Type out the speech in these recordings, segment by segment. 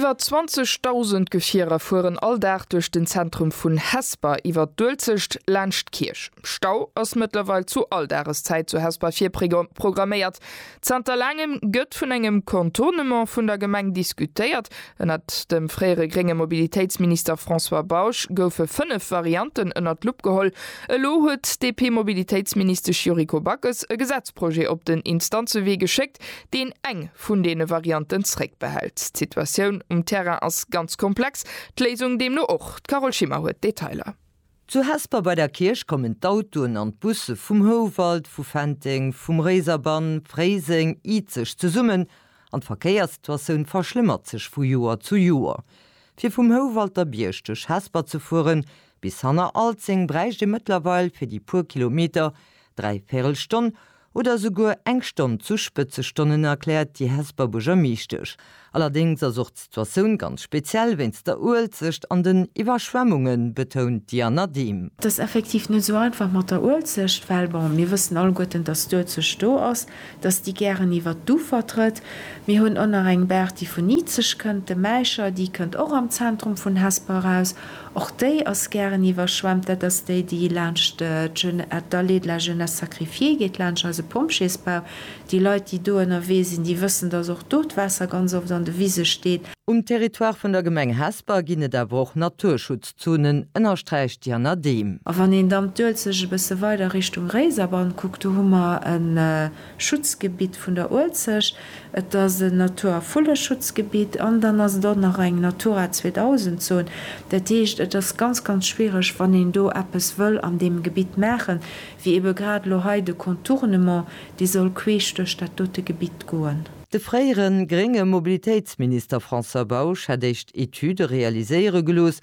Iwwer 20.000 Gefierer fueren all Dag duerch den Zentrum vun Hesper iwwer d'Uelzecht laanscht d'Kierch. Stau ass mëttlerweil zu all Dageszäit zu Hesper virprogramméiert. Zanter laangem gëtt vun engem Contournement vun der Gemeng diskutéiert. Ënnert dem fréiere grénge Mobilitéitsminister François Bausch goufe fënnef Varianten ënnert d'Lupp geholl. Elo huet d'DP-Mobilitéitsministesch Yuriko Backes e Gesetzprojet op den Instanzewee geschéckt, deen eng vun deene Varianten zréckbehält. D'Situatioun um Terrain ass ganz komplex, d'Léisung deemno och. D'Carole Schimmer huet d'Detailer. Zu Hesper bei der Kierch kommen d'Autoen an d'Busse vum Houwald, vu Fenteng, vum Réiserbann, Fréiseng, Izeg zesummen an d'Verkéierssituatioun verschlëmmert sech vu Joer zu Joer. Fir vum Houwalter Bierg duerch Hesper ze fueren bis hanner Alzeng bräicht ee mëttlerweil fir déi puer Kilometer dräi Véirel Stonn Oder souguer eng Stonn zu Spëtzestonnen, erkläert déi Hesper Buergermeeschtesch. Allerdéngs ass och d'Situatioun ganz speziell wéinst der Uelzecht an den Iwwerschwemmungen, betount d'Diana Dehm. Et ass effektiv net esou einfach mat der Uelzecht, well bon, mir wëssen alleguerten, datt d'Uelzecht do ass, datt déi gären iwwert d'Ufer trëtt. Mir hunn och nach eng Baach, déi vun Izeg kënnt, de Mäischer, déi kënnt och am Zentrum vun Hesper eraus. Och déi ass gären iwwerschwemmt. Dat ass déi, déi laanscht d'Allée de la Jeunesse Sacrifiée geet, laanscht eise Pompjeesbau. Déi Leit, déi do ënnerwee sinn, déi wëssen, dass och do d'Waasser ganz oft an de Wise steet. Um Territoire vun der Gemeng Hesper ginn et awer och Naturschutzzonen, ënnersträicht d'Jana Dehm. A wann een dann d'Uelzecht e bësse weider Richtung Réiserbann kuckt, do hu mer e. Schutzgebitt vun der Uelzecht. Et ass en Natur a Vulleschutzgebitt an dann ass et och nach eng Natura 2000 Zon. Dat heescht, et ass ganz, ganz schwiereg, wann een do eppes wëll an deem Gebitt maachen, wéi ebe grad elo hei de Contournement, dee soll queesch duerch dat dote Gebitt goen. De fréiere grénge Mobilitéitsminister François Bausch hätt éischt Etüde realiséiere gelooss.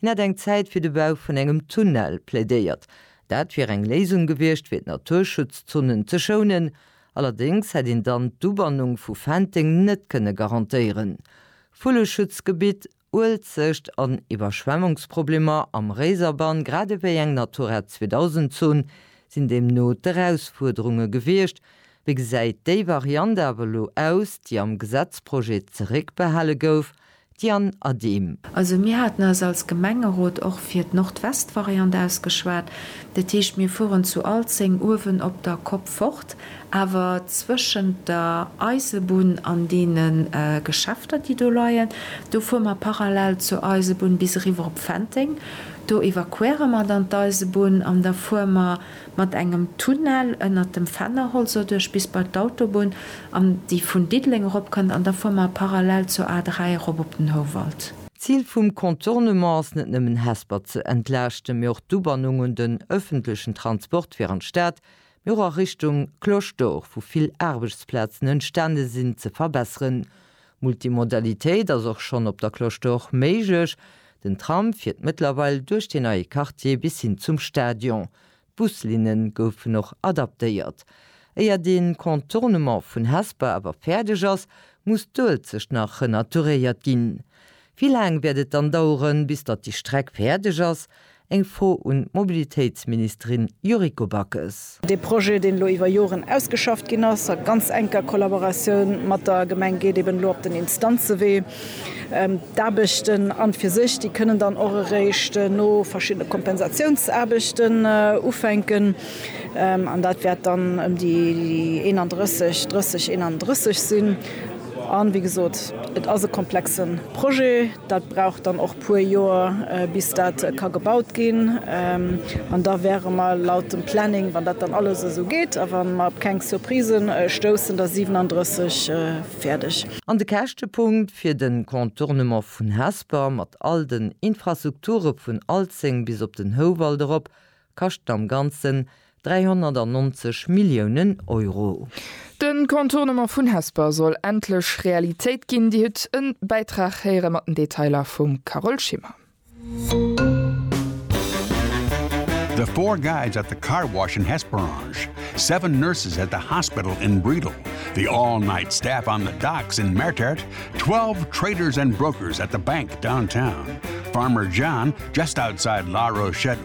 Hien hätt eng Zäit fir de Bau vun engem Tunnel plädéiert. Dat wier eng Léisung gewiescht fir d'Naturschutzzonen ze schounen, allerdéngs hätt een dann d'Ubannung vu Fenteng net kënne garantéieren. Vulleschutzgebitt, Uelzecht an Iwwerschwemmungsproblemer am Réiserbann grad ewéi eng Natura 2000 Zon sinn deemno d'Erausfuerderunge gewiescht. Wéi gesäit déi Variant awer elo aus, déi am Gesetzprojet zeréckbehale gouf, D'Diane Adehm. Also mir haten eis als Gemengerot och fir d'Nordwestvariant ausgeschwat. Dat heescht, mir fueren zu Alzeng uewen op der Kopp fort, awer zwëschent der Eisebunn an deene Geschäfter, déi do leien, do fuere mer parallel zur Eisebunn bis eriwwer op Fenteng. Do evakuéiere mer dann d'Eisebunn an da fuere mer Mat engem Tunnel ënnert dem Fennerholz doduerch bis bei d'Autobunn, an déi vun Diddeleng erop kënnt, an da fuer mer parallel zur A3 erop op den Houwald. D'Zil vum Contournement ass net nëmmen Hesper ze entlaaschten, mee och d'Ubannung un den ëffentlechen Transport fir an d'Stad, mee och a Richtung Cloche d'Or, wou vill Aarbechtsplazen entstane sinn, ze verbesseren. Multimodalitéit ass och schonn op der Cloche d'Or méiglech. Den Tram fiert mëttlerweil duerch dee neie Quartier bis hin zum Stadion. D'Buslinne goufen och adaptéiert. Éier de Contournement vun Hesper awer fäerdeg ass, muss d'Uelzecht nach renaturéiert ginn. Wéi laang wäert et dann daueren, bis datt déi Streck fäerdeg ass? Eng Fro un d'Mobilitéitsministerin Yuriko Backes. Dee Projet, deen elo iwwer Joren ausgeschafft ginn ass, a ganz enker Kollaboratioun mat der Gemeng, geet eben elo op den Instanzewee. D'Aarbechten an fir sech, déi kënnen dann och eréischt no verschiddene Kompensatiounsaarbechten ufänken. An dat wäert dann ëm déi 31, 30, 31 sinn. A wéi gesot, et ass e komplexe Projet. Dat brauch dann och e puer Joer, bis dat ka gebaut ginn. An da wäre mer laut dem Planning, wann dat dann alles esou geet a wa mer op keng Surprisë stoussen, da 37 fäerdeg. An de Käschtepunkt fir de Contournement vun Hesper, mat all den Infrastrukture vun Alzeng bis op den Houwald erop, Kascht am Ganzen 390 Milliounen Euro. De Contournement vun Hesper soll endlech Realitéit ginn, Dir hutt e Bäitrag héiere mat den Detailer vum Carole Schimmer. The four guides at the car wash in Hesperange, seven nurses at the hospital in Briedel, the all-night staff on the docks in Mertert, twelve traders and brokers at the bank downtown, Farmer John just outside La Rochette,